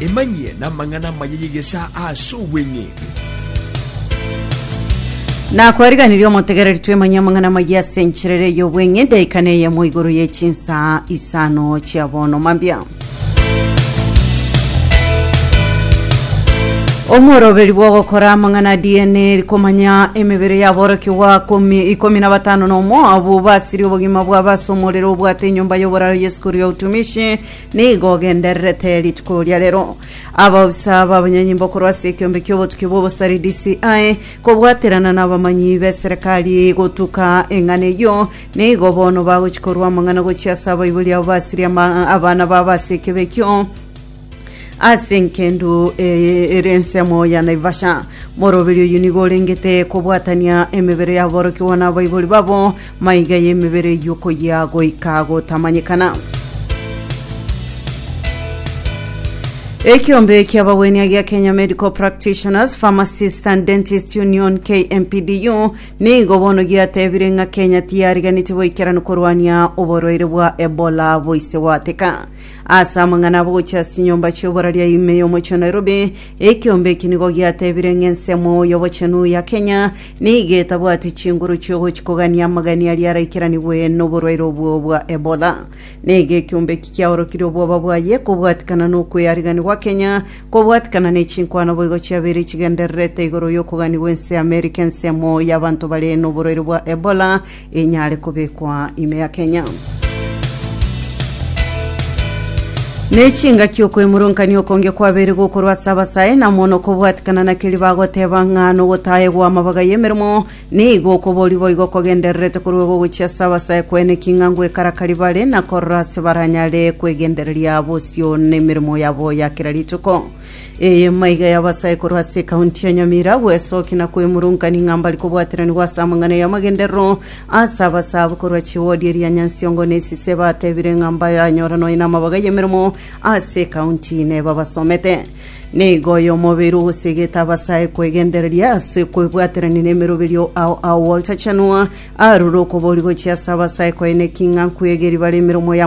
Emanyie namang'ana amaya y'egesaa ase obweng'e. Nakwariganirie omotegereri twemanye amang'ana amaya ase enchera ere y'obweng'e edaika neyemo igoro ye chinsaa isano chia bono mambia. Omworoberi bw'ogokora amang'ana a DNA rikomanya emebere y'aborokigwa komi- ikomi na batano na omo abwo basirie obogima bwabo ase omorero obwate enyomba y'oboraro Yesu Korwa otumishi nigo ogendererete rituko ria rero abaofisa b'abanyanyimbo korwa ase ekiombe ki'obotuki bw'obosari DCI kobwaterana n'abamanyi b'eserekari gotuka eng'ana eyio nigo bono bagochia korwa amang'ana gochia ase abaibori abo basirie ama- abana babo ase ekibe ekio Ase engendu eye ere ensemo ya Naivasha, moroberi oyio nigo orengete kobwatania emebere y'aborokigwa na abaibori babo, maiga y'emebere eyio koyia goika gotamanyekana. Ekiombe ki'abagwenia egia Kenya Medical Practitioners, Pharmacists and Dentists Union KMPDU nigo bono giatebire ng'a Kenya tiyariganeti boikeranu korwania oborwaire bwa Ebola boise gwateka. Ase amang'ana abagochia ase enyomba chi'oboraria ime y'omochie o Nairobi, ekeombe eki nigo giatebire ng'a ensemo y'obochenu ya Kenya nigo etabwati chinguru chi'ogochia kogania amagani aria araikiranigwe noborwaire obwo bwa Ebola. Nigo ekeombe eki kiaorokirie obwoba bwaye kobwatikana nokweyarigania gwa Kenya kobwatikana ne chinkwano boigo chiabeire chigendererete igoro y'okoganigwa ense y'Amerika ensemo y'abanto bare noborwaire bwa Ebola Enyare kobekwa ime ya Kenya. Nechingaki okwemurankania okonge kwabeire gokorwa ase abasae na mono okobwatikana na keria bagoteba ng'a nogotaegwa amabaga y'emeremo nigo okobori boigo kogendererete korwa ogogochia ase abasae kwene ki ng'a ngwekarakari bare na korora ase baranyare kwegendereria bosio nemeremo yabo ya kera rituko Eye maiga y'abasaikoro ase ekaunti ya Nyamira bw'esoki na kwemurungania ng'a mbari kobwateranigwa ase amang'ana y'amagenderero ase abasaabo korwa chiwodi eria ya Nyansiongo na Esise batebire ng'a mbaranyora nonya namabaga y'emeremo ase ekaunti nebabasomete. Nigo oyo omobere ogosegete abasae kwegendereria ase kwebwaterania n'emeroberio ao ao Walter Chanua arure okobori gochia ase abasae koeneki ng'a nkwegeri bare emeremo ya